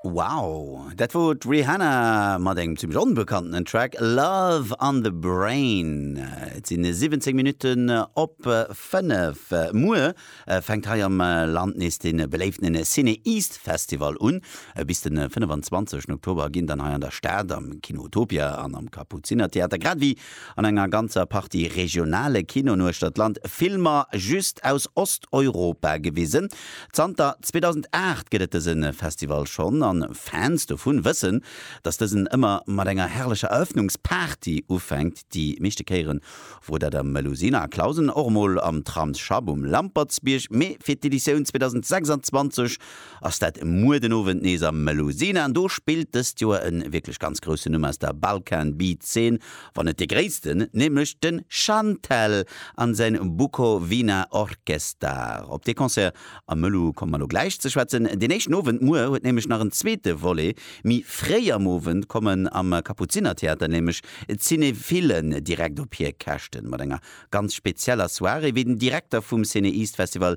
Wow, dat wor d'Rihanna mat engem zimmlech onbekanntenen Track Love on the Brain. Et sinn 17 Minutten op 5. Muer fänkt hei am Land nees de beléiften Ciné East Festival un. Bis de 25 Oktober ginn dann hei an der Stad am Kino Utopia an am Kapuzinertheater grad ewéi An enger ganzer Partie regionale Kinoen uechter d'Land Filmer just aus Osteuropa gewisen. Zanter 2008 gëtt et dëse Festival schonn an Fans dovun wëssen, dass dësen ëmmer mat enger herrlecher Eröffnungsparty ufänkt. Déi meeschte Kéieren wor dat am Melusina a Clausen, och mol am Tramsschapp um Lampertsbierg, mee fir d'Editioun 2026 ass dat muer den Owend nees am Melusina an do spillt dëst Joer e wierklech ganz groussen Numm aus der Balkan Beat Zeen, wann net dee gréissten, nämlech de Shantel an säin Bukovina Orkestar. Op dee Concert am Melu komme mer elo gläich ze schwätzen. Deen éischten Owend muer huet nämlech nach en zweete Volet, méi fréi am Owend kommen am Kapuzinertheater nämlech d'Cinephillen direkt op hir Käschten mat enger ganz spezieller Soirée, wéi den Direkter vum CinEast Festival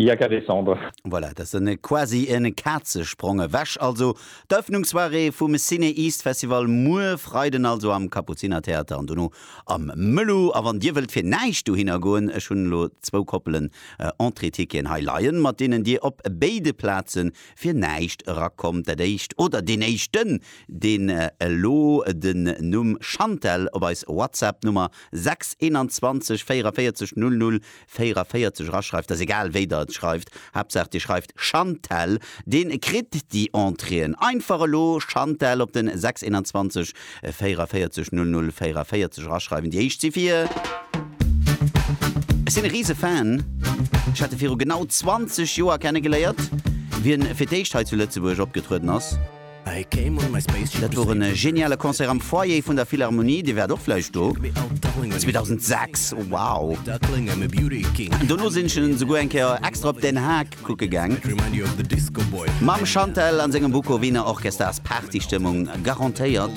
Il y a qu'à descendre. Voilà, dat sen e quasi en Kazesprong ewech. Also d'Ëffnungssoirée vum Ciné East Festival muer Freiden also am Kapuziner Theater an dono am Mëllo. A wann dir wëllt fir näischt dohinner goen, ech hunn elo zwou Koppelen Entrée-Ticketen hei leien, mat deenen dir op béide Plazen fir näischt erakommt. Dat éischt, oder deen éischten, deen elo den Numm Chantelle op eis WhatsApp Nummer 6 21 44 00 44 eraschreift, ass egal wéi der et schreift, Haaptsaach dir schreift Chantelle, dee kritt déi Entréeën. Einfach elo Chantelle op den 621 44 00 44 eraschreiwen. Déi éischt si fir. Ech sinn e riise Fan, ech hat e viru genau 20 Joer kennegeléiert, wéi en fir d'éischt hei zu Lëtzebuerg opgetrueden ass. Dat wor en geniale Concert am Foyer vun der Philharmonie, Dir waart och vläicht do, 2006, wow! Dono sinn ech en esouguer eng Kéier extra op Den Haag kucke gaang. Mam Chantelle an sengem Bukowina Orchester ass Party-Stëmmung garantéiert.